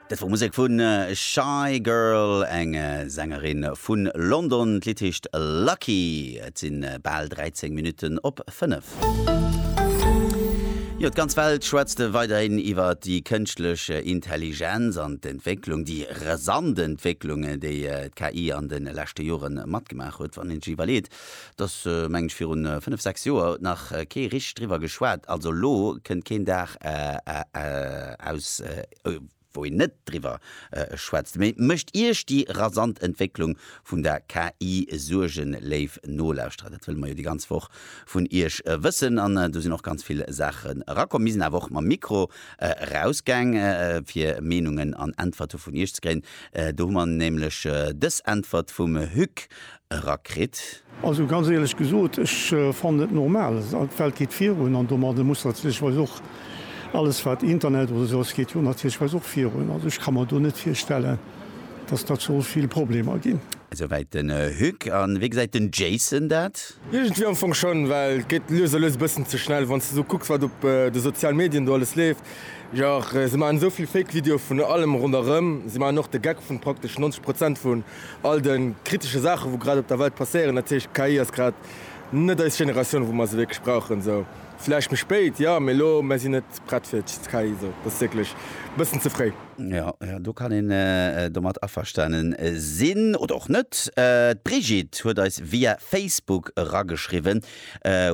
Dat wor Musek vu Shygirl, eng Sängerin vu London. D'Lidd heescht Lucky. Et si bal 13 Minutten op 5. Jo, d'ganz Welt schwätzt weiderhin iwwer déi kënschtlech Intelligenz an d'Entwécklung, déi rasant Entwécklung, déi d'KI an de leschte Jore matgemaach huet. Wann een sech iwwerleet, Dass, mengen ech, virun fënnef, sechs Joer huet nach kee richteg driwwer geschwat. Also elo kënnt keen Dag eraus, wou een net driwwer schwätzt. Mee mécht Iech déi rasant Entwécklung vun der KI Suergen, léif Nolauschterer? Dat wëlle mer jo déi ganz Woch vun Iech wëssen. An do sinn och ganz vill Saachen erakomm. Mir sinn awer och mam Mikro erausgaang, fir Meenungen an Äntwerte vun Iech ze kréien. Do hu mer nämlech dës Äntwert vum Hugues era kritt. Also ganz éierlech gesot, ech fannen et normal, d'Welt geet virun an domadde muss natierlecherweis och alles wat Internet oder esou ass geet jo natierlecherweis och virun. Also ech ka mer do net virstellen, datt dat soll vill Problemer ginn. Esouwäit den Hugues. A wéi gesäit den Jayson dat? Iergendwéi am Fong schonn, well et geet lues a lues e bëssen ze schnell. Wann s de esou kucks wat op de sozialen Medien do alles leeft, jach, si maachen esou vill Fake-Videoe vun allem ronderëm, si maachen och de Gag vun praktesch 90 Prozent vu All de kritesche Saachen, wou grad op der Welt passéieren, dat heescht, d'KI ass grad net eis Generatioun, wou mer se wierklech brauchen. Esou vläicht méi spéit, jo, mee elo, mer sinn net prett fir d'KI. Esou, dat ass wierklech e bëssen ze fréi. Jo, jo, do kann een domat averstane sinn, oder och net. D'Brigitte huet eis via Facebook erageschriwwen,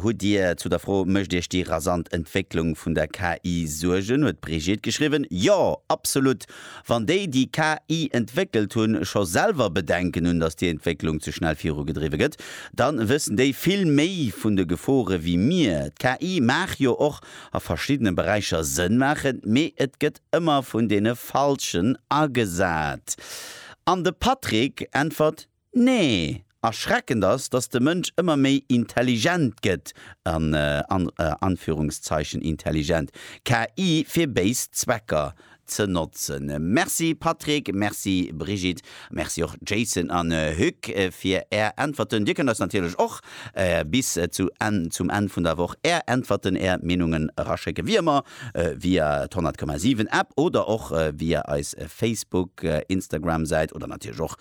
Hutt Dir zu der Fro, Mécht Iech déi rasant Entwécklung vun der KI Suergen? huet d'Brigitte geschriwwen, Jo, absolut! Wann déi, déi KI entwéckelt hunn, scho selwer Bedenken hunn, datt déi Entwécklung ze schnell virugedriwwe gëtt, da wëssen déi vill méi vun de Gefore wéi mir. D'KI mag jo och a verschiddene Beräicher Sënn maachen, mee et gëtt ëmmer vun deene Falschen agesat. An de Patrick äntwert Nee, erschreckend ass, dass de Mënsch ëmmer méi intelligent gëtt, an Anführungszeichen intelligent, KI fir béis Zwecker ze notzen. Merci Patrick, merci Brigitte, merci och Jayson an Hugues fir är Äntwerten. Dir kënnt eis natierlech och bis zum Enn vun der Woch är Äntwerten, är Meenungen eraschécken, wéi ëmmer via d'Honnertkommasiwen App oder och via eis Facebook, Instagram Säit oder natierlech och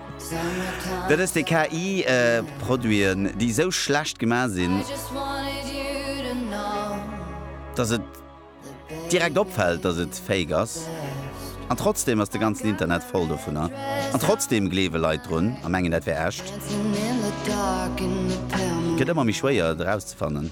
Dat ass déi KI Produiten déi esou schlecht gemaach sinn, dass et direkt opfält dass et Fake ass. An trotzdem ass de ganzen Internet voll dovunner. An trotzdem gleewe Leit drun a mengen dat wär echt. Gëtt ëmmer méi schwéier et erauszefannen.